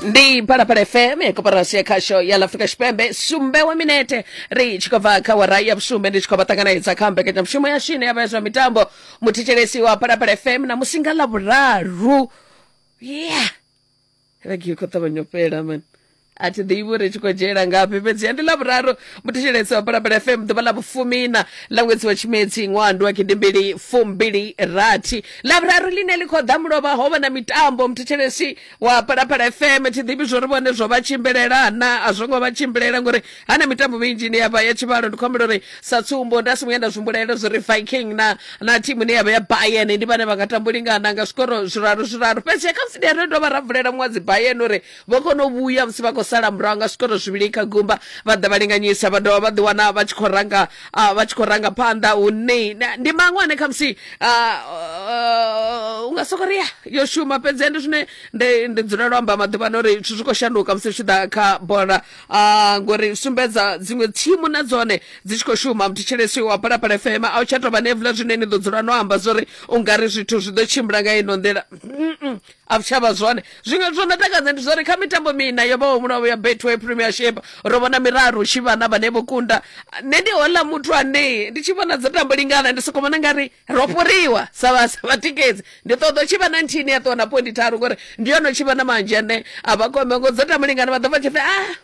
ndi phalaphala fm koporasi ya khasho ya lafrika tshipembe sumbe wa minete ri tshi khou bva kha wara ya vhusumbe ndi tshi khou vha ṱanganedza kha mbekanyamushumo ya shine ya vha ya zwa mitambo muthetshelesi wa phalaphala fm na musinga ḽa vhuraru yeah vhege i khou ṱavhanya u fhela mani a thi ḓivhi uri tshi khou dzhiela ngafhi fhedziha ndi ḽa vhuraru muthetshelesi wa balabala fm ḓuvha ḽa vhufumina ḽa ṅwedzi wa tshimedzi ṅwaha ndi wa gidimbili fumbili rathi ḽa vhuraru ḽine ḽi khou ḓa mulovha ho vha na mitambo muthetshelesi wa balabala fm thi ḓivhi zwo ri vhone zwo vha tshimbilela na a zwo ngo vha tshimbilela ngori ha na mitambo minzhi ine ya vha ya tshivhalo ndi khou humbela uri sa tsumbo nda si vhuya nda zwimbulela zwo ri viking na na thimu ine ya vha ya bayern ndi vhane vha nga tambo lingana nga zwikoro zwiraru zwiraru fhedzi khamusi ndi ya ri dovha ra vulela muṅwe dzi bayern uri Vho kona u vhuya musi vha khou sala murahu nga zwikoro zwivhili kha gumba, vha ḓa vha linganyisa vha dovha vha ḓi wana vha tshi khou ranga ah, vha tshi khou ranga phanḓa hune na- ndi maṅwe ane khamusi ah, ah, u nga soko ri ya yo shuma fhedzi ende zwine ndi ndi dzulela u amba maḓuvhano uri zwithu zwi khou shanduka musi zwi tshi ḓa kha bola ah, ngori sumbedza dziṅwe thimu na dzone dzi tshi khou shuma muthetshelesi wa phalaphala fm a u tsha tou vha nevula zwine ni ḓo dzula no amba zwori u nga ri zwithu zwi ḓo tshimbila nga ino nḓila Mm-mm. a vhutshavha zwone zwiṅwe zwo no takadza ndi zwori kha mitambo mina yo vhaho mulavo ya betway premiership ro vhona miraru tshi vhana vhane vho kunda nṋe ndi hola muthu ane ndi tshi vhona dza tambo lingana ndi soko vhona ngari ro fhuriwa sa vhatikedzi ndi ṱoḓo tshi vha na nthini ya ṱuwa na pointi tharu ngori ndi yono tshi vha na manzhi ane a vha kome ngo dza tambo lingana vha ḓo vha tshi pfe ah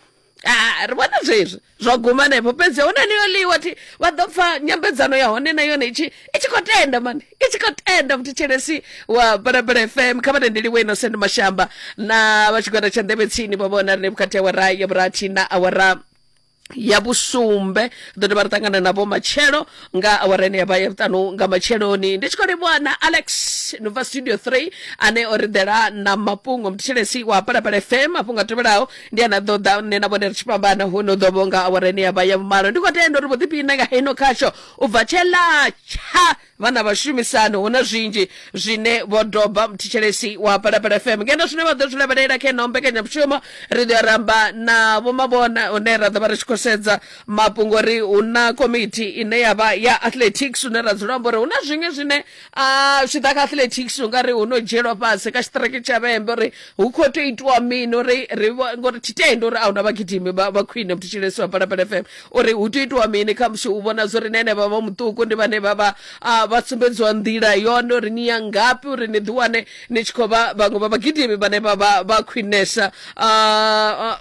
Ah, ri vhona zwezwi zwa guma henefho fhedzi hu na niyo ḽiwa thi vha ḓo pfa nyambedzano ya hone na yone itshi i tshi khou tenda mani i tshi khou tenda muthetshelesi wa balabala fm kha vha tendeliwe innocent mashamba na vha tshigwada tsha nḓevhe tsini vha vhona rine vhukati awara ya vhurathi na awara ya vhusumbe ḓo dovha ri ṱangana navho matshelo nga awara ine yavha ya vhuṱanu nga matsheloni ndi tshi khou livhuwa na alex no bva studio 3 ane o ri ḓela na mafhungo muthetshelesi wa balabala fm mafhungo a tevhelaho ndi a na ḓo ḓa nṋe na vhone ri tshi fhambana hu no ḓo vhonga awara ya vha ya vhumalo ndi khou tenda uri vho ḓiphiṋa nga heino khasho u bva tshela tsha vha na vhashumisani hu na zwinzhi zwine vho doba mthitshelesi wa palapala fm ngeno zwine vha ḓo zwi lavhelela kha ino mbekanyamushumo ri ḓo ramba na vhomavhona hune ra ḓo vha ri tshi khou sedza mafhungo ri hu na komiti ine ya vha ya athletics hune ra dzula amba uri hu na zwiṅwe zwine a zwi ḓa kha athletics u nga ri hu no dzhielwa fhasi kha tshiṱireke tsha vhembe uri hu khou tea itiwa mini uri ri ngori thi tendi uri a huna vhagidimi vha khwine muthu tshilesi wa phalaphala fm uri hu tea itiwa mini kha musi u vhona zwo ri na henevha vha muṱuku ndi vhane vha vha vha sumbedziwa nḓila yone uri ni ya ngafhi uri ni ḓiwane ni tshi khou vha vhaṅwe vha vhagidimi vhane vha vha vha khwinesa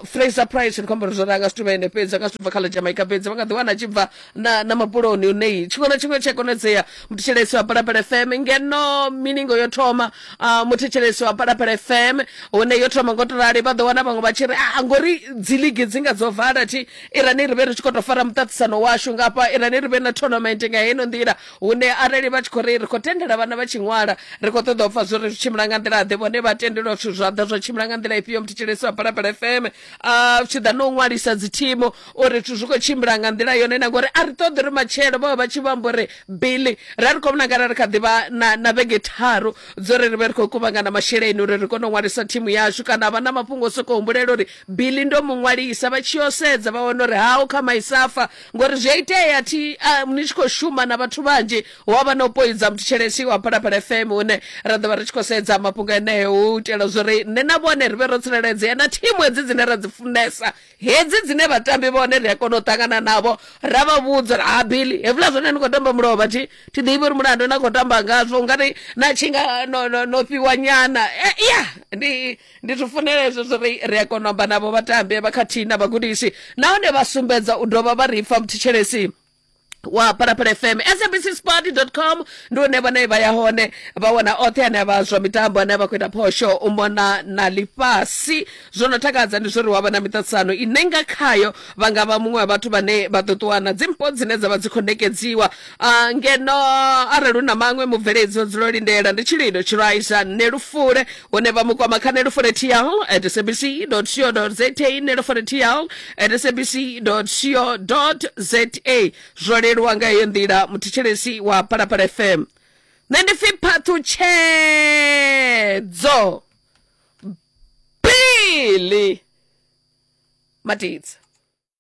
fraser price ndi khou amba uri zwo ranga zwithu vha ene fhedzi a nga zwithu bva kha ḽa jamaica fhedzi vha nga ḓiwana a tshi bva na na mabuloni nei tshiṅwe na tshiṅwe tshi a konadzea muthetshelesi wa palapala fm ngeno miningo yo thoma uh, muthetshelesi wa palapala fm hune yo thoma ngo to rali vha ḓo wana vhaṅwe vha tshi ri a ngori dzi ligi dzi nga dzo vala thi irani ri vhe ri tshi khou tou fara muṱaṱisano washu ngafha irani ri vhe na tournament nga heno nḓila hune arali vha tshi khou ri ri khou tendela vhana vha tshi ṅwala ri khou ṱoḓa u pfa zwo ri zwi tshimbila nga nḓila ḓe vhone vha tendelwa zwithu zwa ḓa zwa tshimbila nga nḓila ifhio muthetshelesi wa palapala fm uh, tshi ḓa no ṅwalisa dzi thimu uri zwithu zwi khou tshimbila nga nḓila yone na ngori a ri ṱoḓi ri matshelo vhavha vha tshi vho amba uri bili ra ri khou vhonakala ri kha ḓivha na, na vhege tharu dzo ri ri vhe ri khou kuvhangana masheleni uri ri kone u ṅwalisa thimu yashu kana vha na mafhungo o sokou humbulela uri bili ndo mu ṅwalisa vha tshi yo sedza vha wana uri hau kha maisafa ngori zwi a itea thi uh, ni tshi khou shuma na vhathu vhanzhi hu a vha na u poidza muthetshelesi wa phalaphala fm une ra ḓo vha ri tshi khou sedza mafhungo eneo u itela zwori nṋe na vhone ri vhe ro tsireledzea na thimu hedzi dzine ra dzi funesa hedzi dzine vhatambi vhone ri a kona u ṱangana navho ra vha vhudza uri ha bili hevula zwone ni khou tamba mulovha thi thi ḓivhi uri mulandu na khou tamba ngazwo ungari na tshi nga no, no, no fhiwa nyana e, ya ndi ndi zwi funela hezwo zwori ri a kona u amba navho vhatambi vha khathihi na vhagudisi nahone vha sumbedza u dovha vha ri pfa muthetshelesi wa phalaphala fm sabc sport com ndi une vhane vha ya hone vha wana oṱhe ane avha zwa mitambo ane vha khou ita phosho u mona na ḽifhasi zwo no takadza ndi zwori wa vha na miṱaṱisano ine nga khayo vha nga vha muṅwe wa vhathu vhane vha ḓo ṱuwana dzimpo dzine dza vha dzi khou nekedziwa Ah, ngeno arali u na maṅwe mubveledzi o dzula o lindela ndi tshilido tshiraiza nṋe lufule hune vha mu kwama kha neloforetial at sabc co za neloforetial at sabc co za zwo leluwa nga heyo nḓila muthetshelesi wa palapala fm nṋe ndi pfi phaṱhutshedzo bili matidza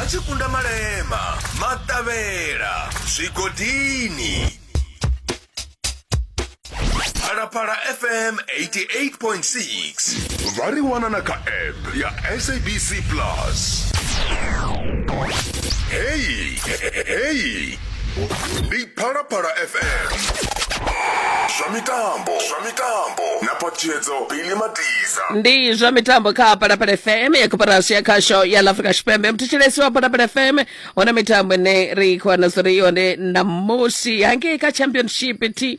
a tshi kunda malema maṱavhela zwigodini phalaphala fm 88.6 vha ri wana na kha app ya sabc plus heyi heyi ndi phalaphala fm zwa mitambo zwa mitambo na patshedzo bili matiza ndi zwa mitambo kha palapala fm ya koporasi ya khasho ya la afrika tshipembe mthetshelesi wa palapala fm hone mitambo ine ri khou wana zwo ri yone ṋamusi hangei kha championship t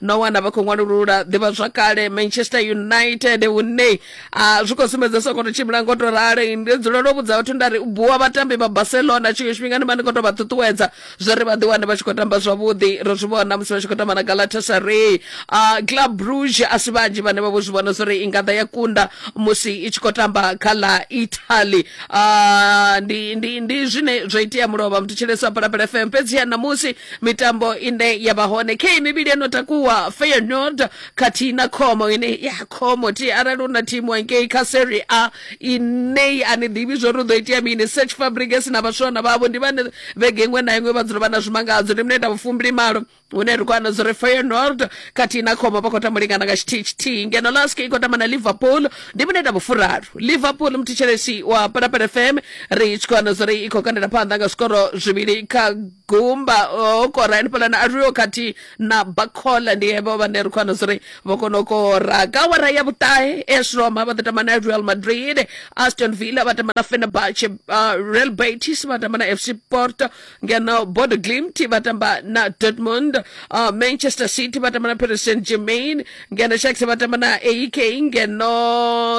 no wana vha khou ṅwalulula ḓivhazwakale manchester united hune a zwi khou sumbedza soko to tshimbila ngo to rali ndi dzulela u vhudza vhathu nda ri u buwa vhatambi vha barcelona tshiṅwe tshifhinga ndi vha ndi khou to vha ṱuṱuwedza zwa ri vha ḓiwane vha tshi khou tamba zwavhuḓi ro zwi vhona musi vha tshi khou tamba na galatasaray uh, club bruge a si vhanzhi vhane vha vho zwi vhona zwa ri i nga ḓa ya kunda musi i tshi khou tamba kha ḽa italy uh, ndi, ndi, ndi zwine zwa itea mulovha mthetshelesi wa phalaphala fm fhedziha ṋamusi mitambo ine ya vha hone khe mivhili yo no takuwa feyenoord khathihi na khomo ine ya khomo ti arali u na thimu hangei kha serie a inei a ni ḓivhi zwo ri u ḓo itea mini search fabriges na vhaswana vhavho ndi vhane vhege iṅwe na iṅwe vha dzula vha na zwimangadzo ndi mineta vhufumbili malo hune ri khou ana zwo ri feyenoord khathihi na khomo vha khou tamba lingana nga tshithihi tshithihi ngeno lask i khou tamba na liverpool ndi mineta vhufuraru liverpool muthetshelesi wa parapara fm ri tshi khou ana zwo ri i khou kandela phanḓa nga zwikoro zwivhili kha gumba o kora hanefhaḽani a luyo khathihi na bakhola ndi hevho vhane ri khou wana zwi ri vho kona u kora ka wara ya vhuṱahe as roma vha ḓo tamba na real madrid aston villa vha tamba na fenerbahce uh, real betis vha tamba na fc porto ngeno bodo glimt vha tamba na dortmund uh, manchester city vha tamba na paris saint germain ngeno shax vha tamba na aek ngeno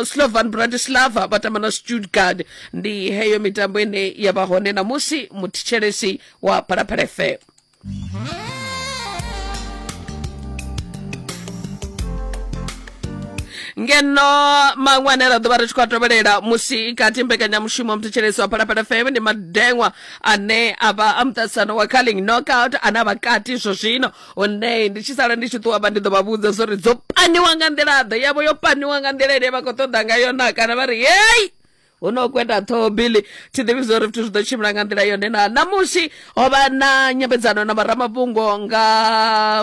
slovan bratislava vha tamba na stuttgart ndi heyo mitambo ine ya vha hone namusi muthetshelesi wa phalaphala fm ngeno maṅwe ane ra ḓovha ri tshi khou a tovhelela musi kati mbekanyamushumo muthetshelesi wa phalaphala fm ndi madeṅwa ane a vha a muṱasano wa calling knockout ane a vha kati zwo zwino hune ndi tshi sala ndi tshi ṱuwa vha ndi ḓo vha vhudza zwo ri dzo paniwa nga nḓila ḓe yavho yo paniwa nga nḓila ine vha khou ṱoḓa ngayo na kana vha ri hei hu no kwenda ṱhoho bili thi ḓivhi zwo ri zwithu zwi ḓo tshimbila nga nḓila yone na ṋamusi ho vha na nyambedzano na vharamafhungo nga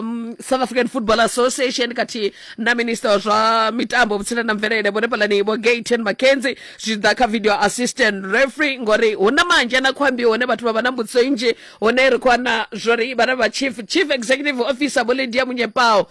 mm, south african football association khathihi na minista wa zwa mitambo vhutsila na mvelele vhone phalani vho gaten mackenzie zwi tshi ḓa kha video assistant referee ngori hu na manzhe na khwambi hone vhathu vha vha na mbudziso nnzhi hone ri khou wana zwori vhana vha chief chief executive officer vho lydia munyepao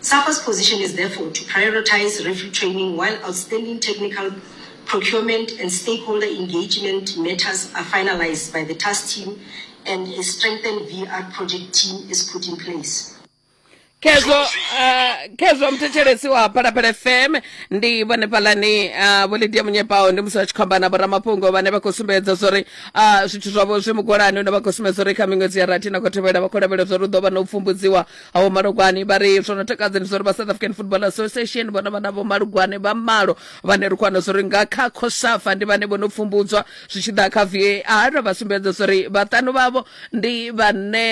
Sapa's position is therefore to prioritize referee training while outstanding technical procurement and stakeholder engagement matters are finalized by the task team and a strengthened VR project team is put in place. khezwo uh, khezwo muthetshelesi wa phalaphala fm ndi vhone phalani uh, vho lidia munyepao ndi musi vha tshi khou amba na vhoramafhungo vhane vha khou sumbedza zwa uri uh, zwithu zwavho zwi mugolani une vha khou sumbedza uri kha miṅwedzi ya rathi na khou tevhela vha khou lavhelela zwa uri u ḓo vha na u pfumbudziwa awo malugwani vha ri zwo no takadza ndi zwa uri vha south african football association vhona vhana vho malugwane vha malo vhane ri kwana zwa uri nga kha khosafa ndi vhane vho no pfumbudzwa zwi tshi ḓa kha var vha sumbedza zwa uri vhaṱanu vhavho ndi vhane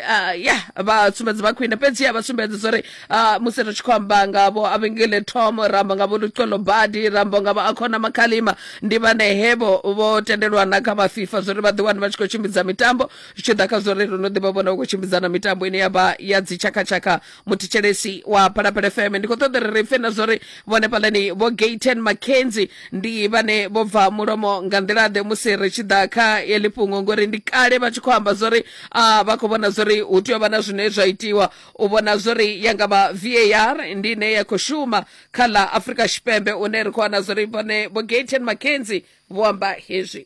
ah, ya vha sumbedza vha khwine fhedzi ya vha sumbedza zwa uri ah, musi ri tshi khou amba ngavho avengele tom ramba ngavho lucolo badi rambo ngavho akhona makhalima ndi vhane hevo vho tendelwa na kha vha fifa zwa uri vha ḓiwane vha tshi khou tshimbidza mitambo zwi tshi ḓa kha zwo ri ro no ḓivha vhona u khou tshimbidza na mitambo ine ya vha ya dzitshakatshaka muthetshelesi wa phalaphala fm ndi khou ṱoḓa ri ri pfe na zwo ri vhone fhaḽani vho gaten mackenzie ndi vhane vho bva mulomo nga nḓilaḓe musi ri tshi ḓa kha heḽi fhungo ngori ndi kale vha tshi khou amba zwo ri a vha khou vhona zwo ri hu tea u vha na zwine zwa itiwa u vhona zwo ri ya nga vha var ndi ine ya khou shuma kha ḽa afrika tshipembe une ri khou wana zwo ri vhone vho gaten mackenzie vho amba hezwi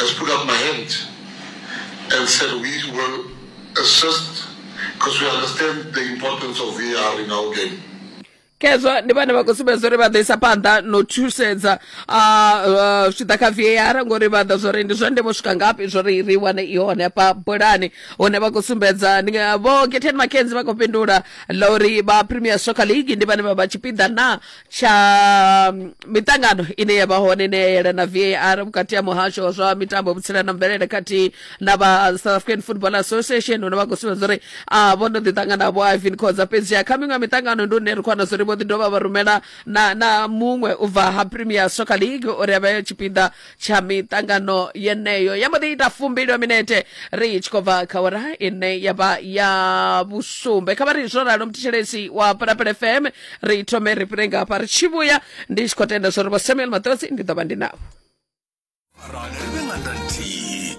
has put up my hand and said we will assist because we understand the importance of VR in our game. khezwo ndi vhane vha khou sumbedza uri vha ḓo isa phanḓa no thusedza zwi tshi ḓa kha var ngori vha ḓa zwori ndi zwa ndeme u swika ngafhi zwori ri wane i hone hafha bulani hune vha khou sumbedza ndi nga- vho geten makenzi vha khou fhindula ḽa uri vha premier soccer league ndi vhane vha vha tshipiḓa na tsha mm, miṱangano ine ya vha hone ine ya yelana var vhukati ha muhasho wa zwa mitambo vhutsila na mvelele khathihi na vha uh, south african football association hune vha khou sumbedza uri a vho no ḓi ṱangana vho ivin khoza fhedzi kha miṅwe miṱangano ndi hune ri khou wana zwa uri vho ḓi dovha vha rumela na na muṅwe u bva ha premier soccer league uri a vhe tshipiḓa tsha miṱangano yeneyo ya mbo ḓi ita fumbilo minete ri tshi khou bva kha ora ine ya vha ya vhusumbe kha vha ri zwo ralo mthetshelesi wa pulapele fm ri thome ri fhire nga hafha ri tshi vhuya ndi tshi khou tenda zwo ri vho samuel maṱodzi ndi ḓo vha ndi navho Arali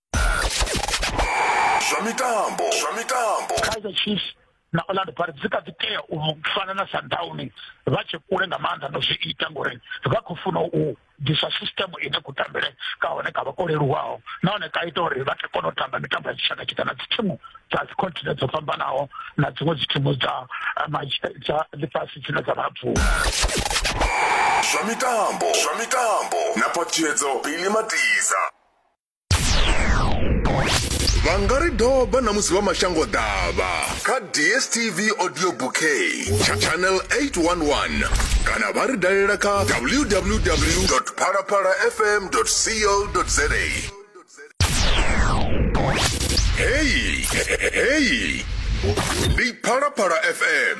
zwa mitambo zwa mitambo kaizer chiefs na orlando pirates dzi kha ḓi tea u fana na sundowns vha tshe kule nga maanḓa no zwi ita ngori vha khou funa u disa system ine ku tambele ka hone ka vha ko leluwaho nahone ka ita uri vha kone u tamba mitambo ya dzitshaka tshika na dzithimu dza dzicontinent dzo fhambanaho na dziṅwe dzithimu dza eh, dza ḽifhasi dzine dza vha bvuma zwa mitambo zwa mitambo na phaṱhiyedzo bili matiza vha nga ri doba na musi vha mashango ḓavha kha dstv audio bouquet tsha channel 811 kana vha ri dalela kha www phalaphala fm co za heyi heyi ndi phalaphala fm